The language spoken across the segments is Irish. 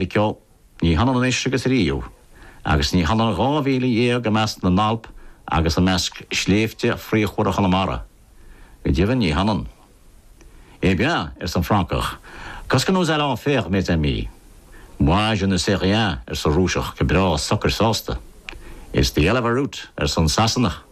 Níorbh ea. Ní hionann anois agus ariamh. Agus ní hionann dhá mhíle dhéag i measc na nAlp agus i measc sléibhte fraochmhara Chonamara. Go deimhin ní hionann. Eh bien, arsa an Francach, qu'est-ce que nous allons faire, mes amis? Moi, je ne sais rien, arsa an Rúiseach go breá socair sásta. It's the hell of a route, arsa an Sasanach.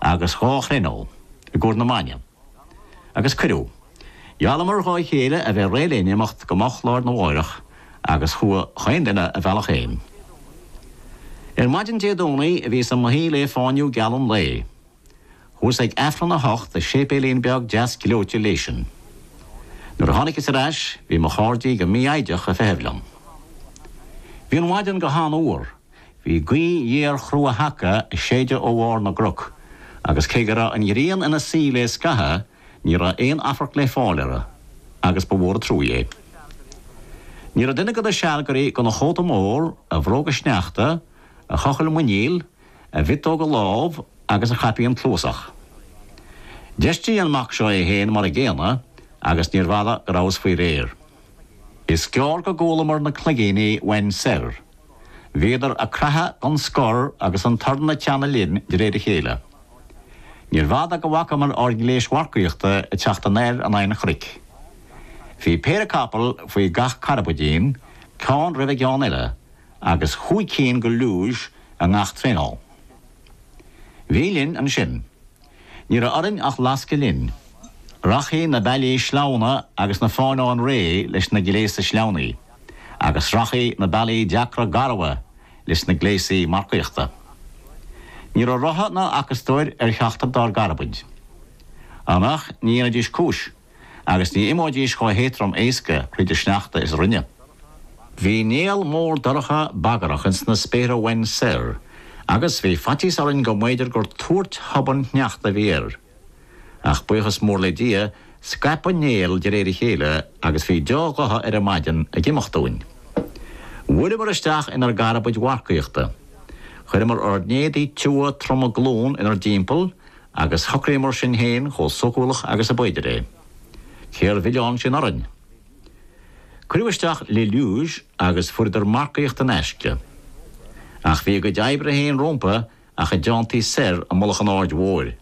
agus dhá thraenáil i gcomhair na maidne, agus cuireadh. Gheallamar dhá chéile a bheith réidh le n-imeacht go moch lá'r na mháireach agus chuaigh 'chaon duine a bhealach fhéin. Ar maidin Dé Domhnaigh bhíos i mo shuí lé fáinniú geal an lae. Chuas ag Aifreann a hocht i séipéilín beag deas gleoite Léisin. Nuair a tháiniceas ar ais bhí mo chairde go mí-fhoighdeach a' feitheamh liom. Bhí an mhaidean go han-fhuar Bhí gaoth ghéar chrua sheaca ag séideadh ó bharr na gcnoc, agus cé go raibh an ghrian ina suí lé scatha, ní raibh aon afarc lé fáil uirthi, agus ba mhór an truaí é. Ní raibh duine go na sealgairí gan a chóta mór, a bhróga sneachta, a chochaill muiníl, a mhiotóga lámh agus a chaipín cluasach. D'fheistigh an mac seo é féin mar an gcéanna, agus níorbh fhada go rabhas faoi réir. Is gearr go gcualamar na cloigíní uainn soir. Bhíodar a' craitheadh gan scor agus an torann ag teannadh linn de réir a chéile. Níorbh fhada go bhfacamar ár ngléis mharcaíochta ag teacht anoir in aghaidh an chnoic. Bhí péire capall faoi gach carbaidín, ceann roimh an gceann eile, agus chúig cinn go luge i ngach traenáil. Bhí linn ansin. Ní raibh orainn ach lascadh linn. Rachaidh na bealaí sleamhna agus na fánáin réidh leis na gléasa sleamhnaithe, agus rachaidh na bealaí deacra garbha leis na gléasaí marcaíochta. Ní raibh rotha ná acastóir ar cheachtar dár gcarbaid. Mar nach ndéanfaidís cúis? agus ní imeoidís chomh héadtrom éasca thríd an sneachta is a rinne. Bhí néal mór dorcha bagarach ins na spéartha uainn soir, agus bhí faitíos orainn go mb'fhéidir gur tuairt thobann shneachta a bhí air. Ach buíochas mór le Dia, scaip an néal de réir a chéile agus bhí deá ghotha ar an maidin ag imeacht dúinn. Bhuaileamar isteach inar gcarbaid mharcaíochta. Chuireamar ár n-éadaí tiubha troma glún inar dtimpeall, Agus shocraíomar sinn fhéin chomh sócúlach agus ab fhéidir é. Cé'r mhilleán sin orainn? Cuireadh isteach les luges agus fuaireadar marcaíocht in aisce. Ach bhí a gcuid oibre fhéin rómpu ach a dteantaí soir i mullach an Áird Mhóir.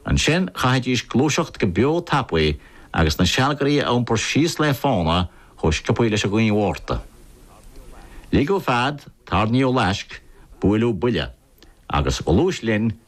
Ansin chaithfidís gluaiseacht go beo tapaidh agus na sealgairí a iompar síos lé fána chomh sciopaidh leis an ghaoth Mhárta. Ligeadh fead, tairníodh laisc, buaileadh buille. Agus ghluais linn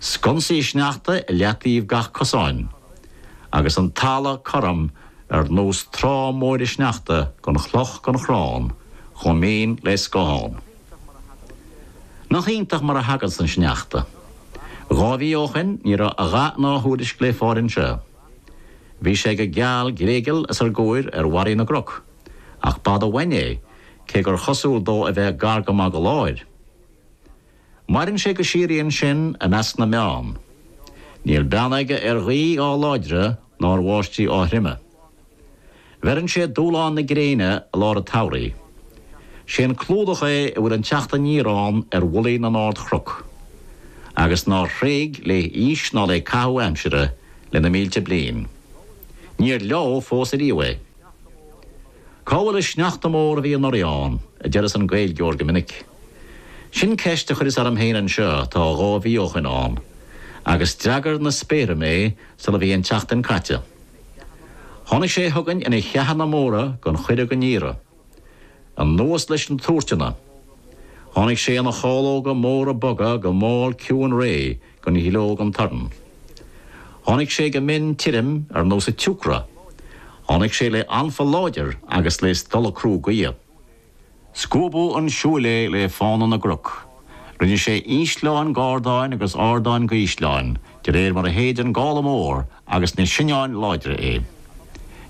Sconsaí sneachta i leataoibh gach cosáin. Agus an talamh cothrom ar nós trá móire sneachta gan chloch gan chrann chomh mín le scáthán. Nach iontach mar a thaganns an sneachta. Dhá mhí ó shoin ní raibh a dhath ná a thuairisc le fáil anseo. Bhí sé go geal gléigeal os ár gcomhair ar bharraí na gcnoc, ach b'fhada uainn é, cé gur chosúil dó a bheith gar go maith do láthair. Maireann sé go síoraí ansin i measc na mbeann. Níl beann aige ar ghaoth á láidre ná ar bháistigh á throime. Bheireann sé dúshlán na gréine i lár an tsamhraidh. Sé an clúdach é a bhfuil an teacht aniar ann ar mhullaí na n-ardchnoc, agus nár thréig le haois ná le caitheamh aimsire le na mílte bliain. Níor leádh fós ariamh é. Cá bhfuil an sneachta mór a bhí anuraidh ann? a deireas an Gaeilgeoir go minic. Sin ceist a chuireas orm féin anseo tá dhá mhí ó shoin ann, agus d'fhreagair na spéartha mé sula bhí an tseachtain caite. Tháinig sé chugainn ina cheathanna móra gan chuireadh gan iarraidh. Anuas leis na tuairteanna. Tháinig sé ina chalóga móra boga go mall ciúin réidh. gan ghleo gan torann. Tháinig sé go mín tirim ar nós an tsiúcra. Tháinig sé le anfa láidir agus le stolladh crua gaoithe. Scuabadh chun siúil é le fána na gcnoc. Rinne sé ísleáin de ardáin agus ardáin de ísleáin de réir mar a shéid an gála mór agus na soinneáin láidre é.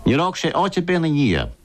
Níor fhág sé áit ar bith ina dhiaidh.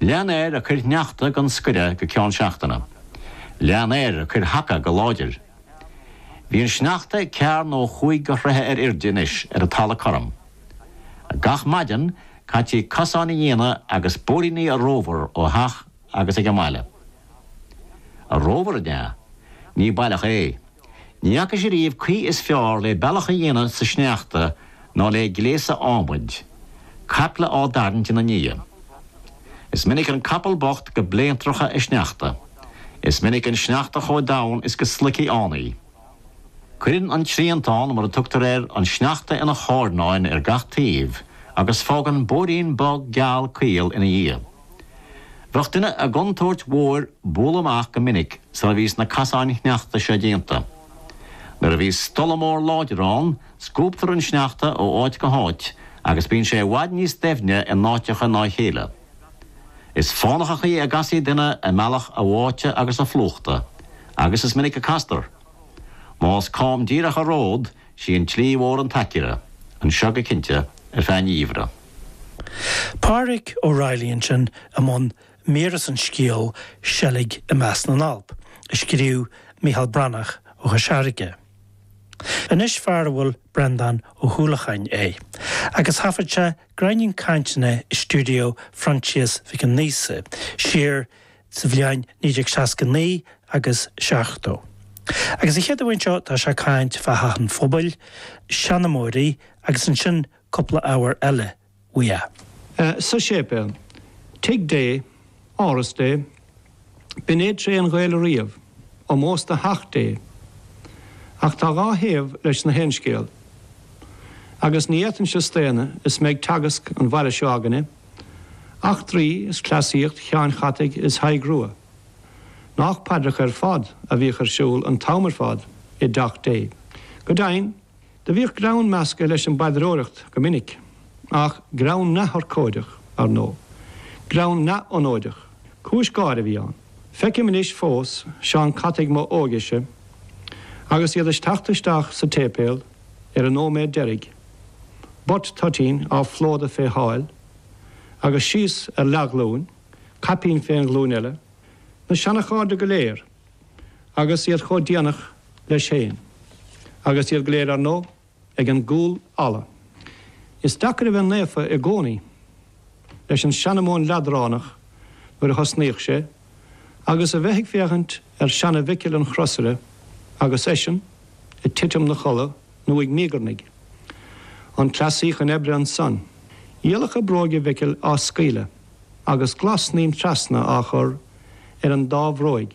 Lean air ag cur shneachta gan scoireadh go ceann seachtaine. Lean air ag cur sheaca go láidir. Bhí an sneachta ceathair nó cúig de throithe ar airde anois ar an talamh cothrom. Gach maidin, caití cosáin a dhéanamh agus bóithríní a rómhar ó theach agus ag an mbaile. A rómhar an ea? Ní baileach é. Ní fhacas ariamh caoi is fearr le bealach a dhéanamh sa sneachta ná le gléasa adhmaid, caiple á dtarraingt ina ndiaidh. Is minic an capall bocht go bléantracha i sneachta. Is minic an sneachta chomh domhain is go sloigfí ann í. Cuireann an triantán, mar a tugtar air, an sneachta ina charnáin ar gach taobh agus fágann bóithrín bog geal caol ina dhiaidh. Bheadh duine i gcontúirt mhór bualadh amach go minic sula bhíos na casáin shneachta seo déanta. Nuair a bhíos stolladh mór láidir ann, scuabtar an sneachta ó áit go háit agus bíonn sé i bhfad níos doimhne i n-áiteacha ná a chéile. Is fánach an chaoi a gcasfaí duine i mbealach a bháite agus a phlúchta, agus is minic a castar. Más cam díreach an ród, Sí an tslí mhór an t-aicearra anseo go cinnte ar feadh an gheimhridh. Pádraic Ó Raghallaigh ansin i mbun mír as an scéal 'Seilg i Measc na nAlp' a scríobh Micheál Breathnach ó Chois Fharraige. Anois fear a bhfuil Brendán Ó hUallacháin é agus thaifead sé gráinnín cainteanna i stiúideo Phroinsias Mhic Aonghusa siar sa bhliain 1969 agus 70. Agus an chéad cheann seo tá sé ag caint fá theach an phobail, seanamóirí agus ansin cúpla ábhar eile uaidh a. sa séipéal, tigh Dé, áras Dé, b'in é tréith an Ghaeil ariamh, ómós do theach Dé. Ach tá dhá thaobh leis na haon scéal. Agus ní fhéadfainnse staonadh is mé ag teagasc ar an bhaile seo againne, Eachtraí is cleasaíocht Sheanachait is Thaidhg Rua. Nách paidreacha ar fad a bhíodh ar siúl an t-am ar fad i dTeach Dé. Go deimhin, do bhíodh greann measctha leis an bpaidreoireacht go minic, ach greann neamhurchóideach, ar ndóigh. Greann neamhionóideach. Cúis gáire a bhí ann. Feicim anois fós seanachataigh mo óigese agus iad ag teacht isteach sa tséipéal, ar an nóiméad deiridh, buit toitín á phlódadh fé sháil agus síos ar leathghlúin, caipín fén ghlúin eile, na seanachairde go léir agus iad chomh déanach leis féin, agus iad go léir, ar ndóigh, ag an gcúlfhalla. Is deacair a bheith naofa i gcónaí. leis an seanamóin leadránach nuair a thosnaíodh sé, agus a bheith ag féachaint ar sheana-Mhicil an chrosaire agus eisean ag titim 'na chodladh nó ag míogarnaigh. An cleasaí i mbun oibre ansan? Iallacha bróige Mhicil á scaoileadh agus glas-snaidhm trasna á chur ar an dá bhróig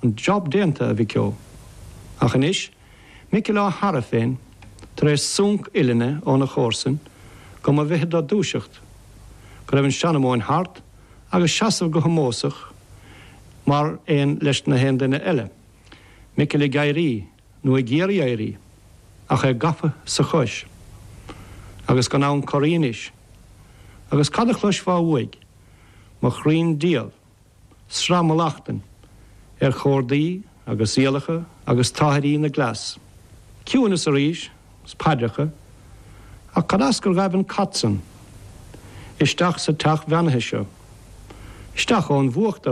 an job déanta, a mhiceo. Ach anois, Micil á shearradh féin, tar éis súnc uillinne óna chomharsain, go mba mhithid dó dúiseacht, go raibh an seanamóin thart, agus seasamh go hómósach mar aon leis na haon duine eile, Micil ag éirí, nó ag iarraidh éirí, ach é gafa sa chois, agus gan ann corraí anois. Agus cad a chloisfeá uaidh? Mo chroí'n dial! Sraith mhallachtan ar chordaí agus iallacha agus táthairí na gcleas. Ciúineas arís, 's paidreacha. Ach cad as gur ghaibh an cat san isteach sa teach bheannaithe seo? Isteach ón bhfuacht,